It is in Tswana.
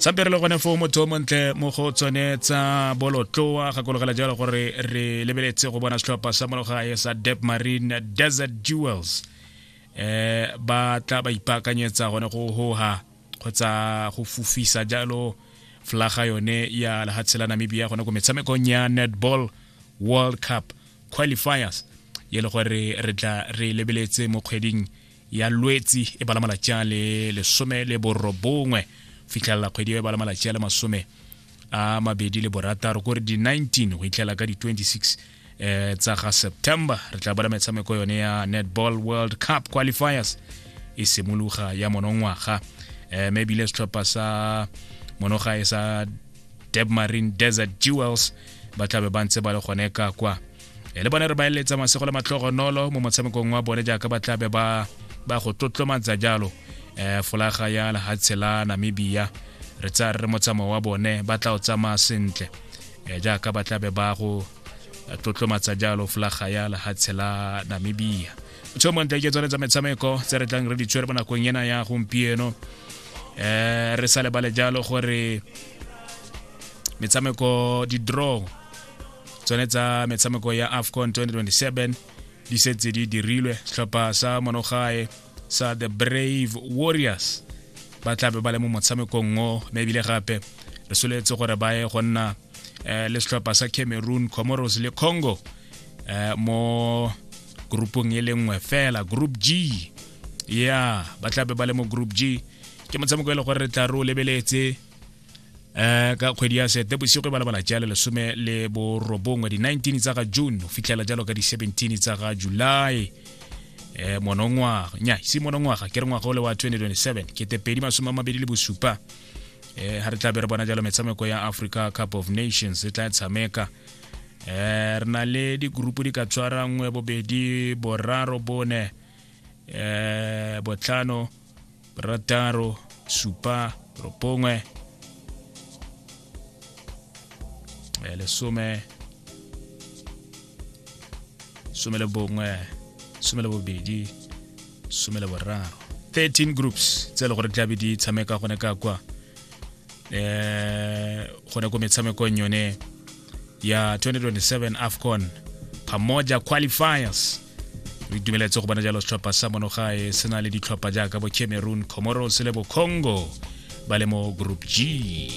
sampe re le gone foo motho o montle mo go tsone tsa bolotloa gakologela jalo gore re lebeletse go bona setlhopha sa mologae sa dep marine desert jewels eh ba tla ba ipaakanyetsa gone go hoha kgotsa go fufisa jalo flaga yone ya lehatshe la namibia gone ko metshamekong ya netball world cup qualifiers ye le gore re tla re lebeletse mo kgweding ya lwetsi e bala malatsi a le lesome le borobongwe fitlhelela kgwedi e bala malatsi a le masome a mabedi le borataro kore di-19 go itlhela ka di-26 eh, tsa ga september re tla bala metshameko yone ya netball world cup qualifiers e simologa ya monongwaga eh, mme ebile setlhopha sa monoga e sa debmarine desert jewels ba tlabe ba ntse ba le gone ka kwa e le bone re ba eletsa masego le matlhogonolo mo motshamekong wa bone jaaka ba tlabe ba ba go tlotlomatsa jalo um folaga ya lehatshe la namibia re tsaya re re motsamao wa bone ba tla o tsamaya sentle um jaaka ba tlabe ba go tlotlomatsa jalo folaga ya lehatshe la namibia tsho montle ke tsone tsa metshameko tse re tlang re di tshwere mo nakong ena ya gompieno um re sa lebale jalo gore metshameko di-draw tsone tsa metshameko ya afcon 2027 di setse di dirilwe setlhopha sa monogae sa the brave warriors ba tla be ba le mo motshamekong o mme ebile gape re soletse gore ba ye go nna eh, le setlhopha sa cameroon comoros le congo eh, mo groupong e le nngwe fela group g ya ba tla be ba le mo group g ke motshameko e le gore re tla re o lebeletse um ka kgwedi ya sete bosigo e balabala jale lesome le borobongwe di-19 tsa ga june go fitlhela jalo ka di-17 tsa ga july um monongwaga nya se monongwaga ke re ngwaga o le wa 2027 kete pedi masome a mabedi le bosupa um ga re tla be re bona jalo metshameko ya africa cup of nations e tla tshameka um re na le digurupu di ka tshwarangwe bobedi boraro bone um botlhano rataro supa ropongwe eh, lesome some le bongwe some le bobedi some le boraro 13 groups tse e le gore tlabe di tshameka gone ka kwa um gone ko metshamekong yone ya 2027 afcon pamoja qualifiers re itumeletse go bona jalo setlhopha sa monogae se na le ditlhopha jaaka bo cameroon comoros le bo congo ba le mo group g